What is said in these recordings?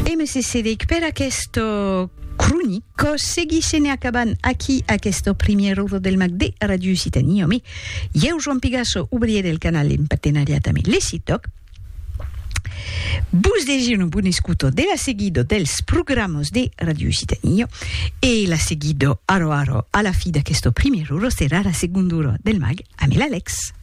E me cedèc per aquesta cronica. Seguissem e acabam aquí aquesta primièra ora del mag de Radio Occitània. Ome, ieu Joan Pigasso, obrier del canal en patenariat ame Lecitoc, vos desir una bona escuta de la seguida dels programas de Radio Occitània e la seguida ara ara a la fi d'aquesta primièra ora serà la segonda ora del mag ame l'Alex.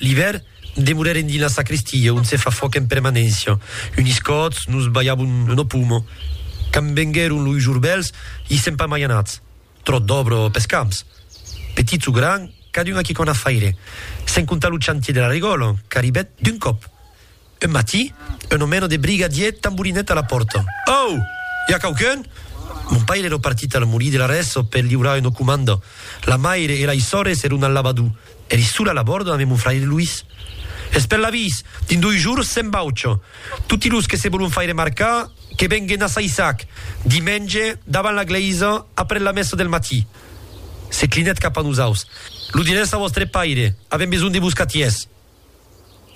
L'ivèr, demorèrem dins la sacristia, ont se fa fòc en permanéncia. Unis còts, nos balhavon lo pomo. Quand venguèron los jorbèls, i sèm pas mai anats. Tròt d'òbra pes camps. Petits o grands, cadun a quicòna faire. Sens comptar lo chantier de la regòla, qu'arribèt d'un còp. Un matí, un omèno de briga dièt tamborinèt a la pòrta. Au! I a quauqu'un? Mon paire ero partit al molí de l'Arresso per liurar una comanda. La maire e lei sòrres eron al lavadú. Eri sola a la bòrda ambe mon fraire Luís. Es per l'avís! Dins doi jours se'n baucha. Toti los que se volon faire marcar, que venguen a Saissac, dimenge, davant la glèisa, après la messa del matí. Se clinèt cap a nosaus. Lo dirètz a vòstre paire. Avèm besonh de vos catièrs.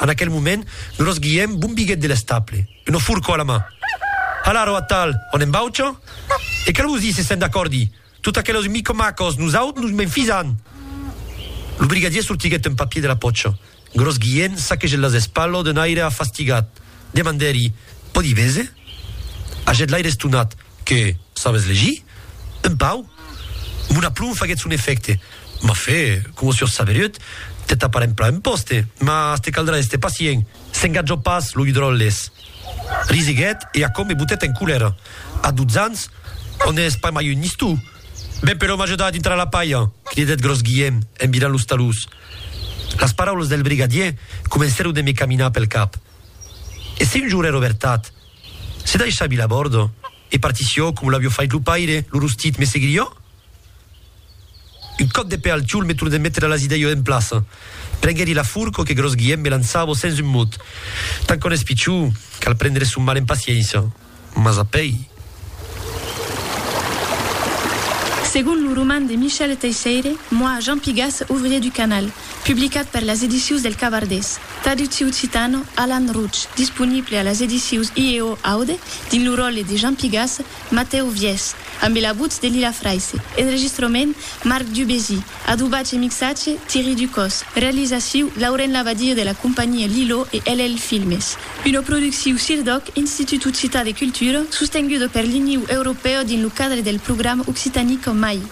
En aquel moment, gros Guilhem bombiguèt de l'estaple, una forcò a la man. Hala, ro atal, on en baucha? E qu'a vos díser se'n d'acòrdi! Tot aquelos micomacos, nosaut nos m'enfisan! Lo brigadier sortiguèt un papier de la pòcha. Gros Guilhem saquegèt las espalhos d'un aire afastigat. Demandèri, Pòdi véser? Hagèt l'aire estonat. Que sabes legir? Un pau? Mon aplomb faguèt son efècte. M'a fait, coma sur saberiut, te tapar en plan un pòste, mas te caldrà èster pacient. S'engatjò pas lo Hidròles. Risiguèt e aquò me botèt en colèra. A dotze ans, ò n'ès pas mai un nistou? Ben però m'ajuda a dintrar la palha! cridèt Gròs Guièm en virant los talús. Las paraulas del brigadier comencèron de me caminar pel cap. E se un jorn èra vertat? Se daissà vila bòrdo e partissió com l'avió fait lo paire, lo rostit me seguirió? Un còp de pè al tiol me tornèt metre las idèio en plaça. Prenguèri la furco que Gròs Guièm me lançavo sens un mot. Tant qu'on es pichó, cal prendre son mal en paciéncia. Mas apèi. Segon lo roman de Michel Teisseire, Moi, Jean Pigas, ouvrier du canal, publicat per las edicius del Cavardés. Traducciu citano Alan Rootch, disponible a las edicius IEO Aude dins lo ròtle de Jean Pigas, Matèu Viès, ambe la votz de Lila Fraisse, enregistrament Marc Dubésy, adobatge e mixatge Thierry Ducos, realizaciu Lauren Labadie de la companhia Lilo e LL Filmes. Una producciu CIRDOC, Institut Occitan de Cultura, sostenguda per l'Iniu Europèu dins lo cadre del programa Occitanie qu'en mai.